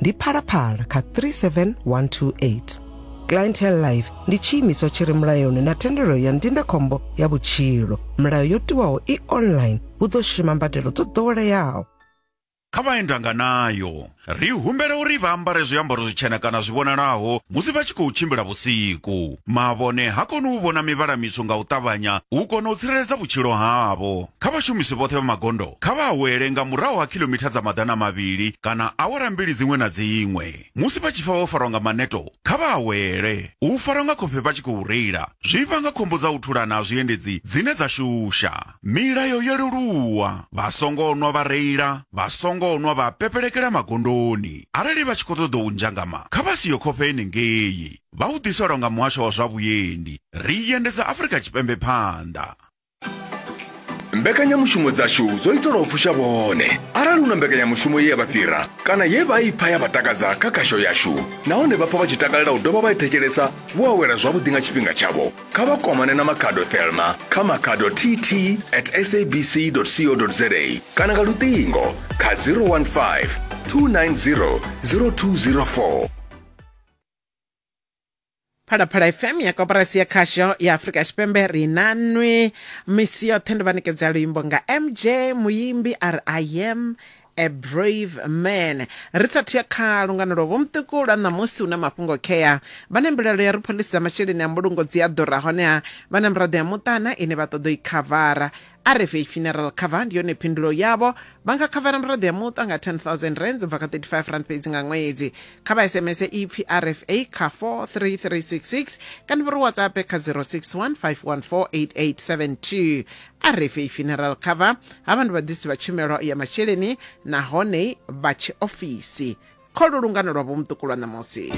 ndi phalaphala kha 37128 clientele life ndi tshiimiswa tshi re mulayoni na thendelo ya ndindakhombo ya vhutshilo milayo yo tiwaho i online hu ḓo shuma mbadelo dzo ḓoweleaho kha vha endanga nayo ri humbela uri vha ambare zwiambaro zwitshena kana zwi vhonalaho musi vha tshi khou tshimbila vhusiku mavhone ha koni u vhona mivhala mitswu nga u ṱavhanya u kona u tsireledza vhutshilo havho kha vhashumisi vhoṱhe vha magondo kha vha awele nga murahu ha khilomitha dza maḓana mavhili kana awara mbili dziṅwe na dziṅwe musi vha tshi pfa vho farwa nga maneto kha vha awele u farwa nga khofhe vha tshi khou reila zwi vhanga khombo dza u thulana ha zwiendedzi dzine dza shusha milayo yo leluwa vha songo nwa vha reila vha songo nwa vha pepelekela magondoni arali vha tshi khou ṱoḓa u nzhangama kha vha siyo khofhe henengei vha u ḓiselwa nga muhasho wa zwa vhuendi ri i endedza afurika tshipembe phanḓa mbekanyamushumo dzashu dzo itelwa u fusha vhone arali hu na mbekanyamushumo ye ya vha fhira kana ye vha i pfa ya vha takadza kha khasho yashu nahone vha pfa vha tshi takalela u dovha vha i thetshelesa vho awela zwavhuḓi nga tshifhinga tshavho kha vha kwamane na makhado thelma kha makhado tt at sabc co za kana nga luṱingo kha 015 290 0204 phalaphala fm ya koporasi ya khasho ya afurika tshipembe ri na nwi misi yoṱhe ndi vha ṋekedza luimbo nga mj muyimbi a ri i am a brave man ri sathu ya kha lungano lwa vhomuṱuku lwa ṋamusi hu na mafhungo khea vha na mbilaelo ya ri phoḽisi dza masheleni a mbulungo dzi a ḓura honeha vha na miraḓo ya muṱana ine vha ṱoḓa u i khavara rfh funeral cover ndi yone phindulo yavho vha nga khavara miraḓo ya muṱa nga 10000 rands u bva kha 35 rand fhedzi nga ṅwedzi kha vha sms ipfi rfa kha 43366 kana vha ri whatsapp kha 0615148872 rfa funeral cover ha vha ndi vhaḓisi vha tshumelo ya masheleni nahone vha tshiofisi kholo lungano lwa vhomuṱuku lwa ṋamusi